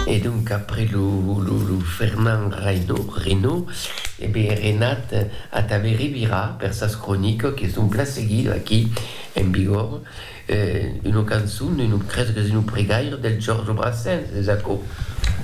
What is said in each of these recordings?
E donc après lo Fernand Reynaud, e be Renat a tà be revirar per sas cronicas que son plan seguidas aquí en Bigòrre, una cançon, crèsque qu'es una pregaira del Georges Brassens, es aquò?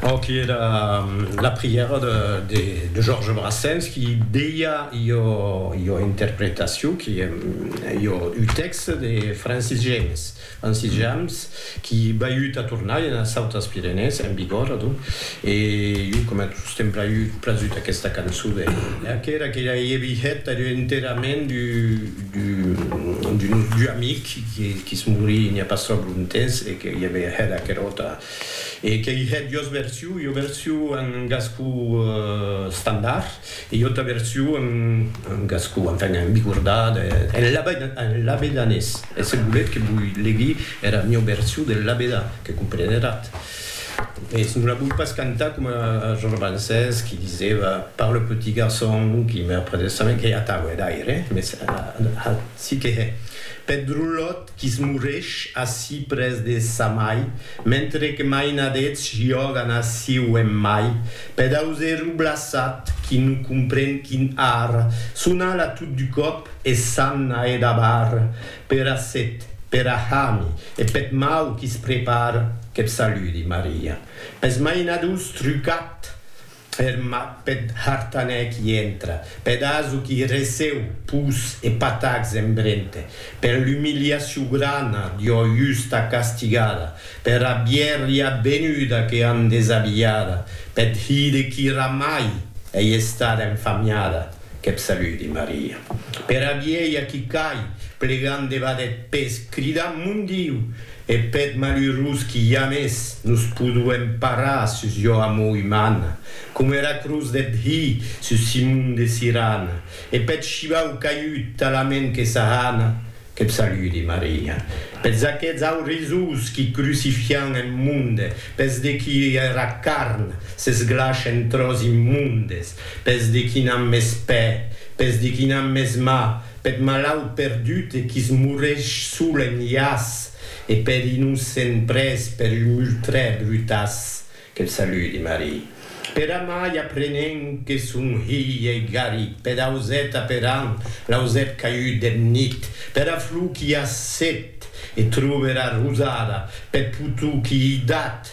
Aqui èra la prièra de Georges Brassens qui deia ua interpretacion, un tèxte de Francis Jammes. En Sitjams, qui baiut a tornar enas autas Pirenèes, en Bigòrre, adonc, e jo coma tostemp braiut prazut aquesta cançon de Lea, qu'era que ja ei vihet ath enterrament d'un nostre amic qui se morí n'i a pas tròp lontemps e que i avè hèt aquera auta e qu'ei hèt jos version, jo version en gascon estandard. E jo t'avertio en gascon, enfin en bigordat, en labedanés, e se voletz que voi legui era mieu version del labedà, que comprenerat, mès non la voi pas cantar coma Georges Brancés qui diseva par le petit garçon qui meurt près de sa main, que atau hè d'aire, mès acic que hè, peth drolòt que's morrèsh ací près de sa mai, mentre que mainadets jògan aciu en mai, pedaus e rublassat qui non compren quin ar, son ala tot du còp e s'anna e dabar, pera set, pera hami e peth mau qui's prepar, que'p saludi, Maria, pes mainadus trucat! Ferma peth hartanèc i entra. Peth aso qui receu pus e patacs en brente. Per l'umiliaciu grana d'ua justa castigada. Pera bièrria venuda que an desabilhada. Peth hire qui ramai ei estada enfamiada. Que p' saludi, Maria. Pera vielha qui cai plegant debat eth pes, cridant, Mon Diu! E peth malurós qui james nos poduem parar sus ua amor umana, coma era crotz deth Hi sus Simon de Sirana, e peth shivau caiut talament que s'ahana, que p' saludi, Maria, peths aqueths aurizós qui crucifian en monde, peths de qui era carn s'esglash en tròç immondes, peths de qui n'an mès pè, peths de qui n'an mès mà, Peth malaut perdut e qui's moresh sol en iàs e peth innocent prés per un ultrè brutàs que'l saludi Marie. Per amai aprenent que son hilh ei garit peth auset aperant l'auset caiut deth nit pera flor qui a set e trober arrosada peth potou qui ei dat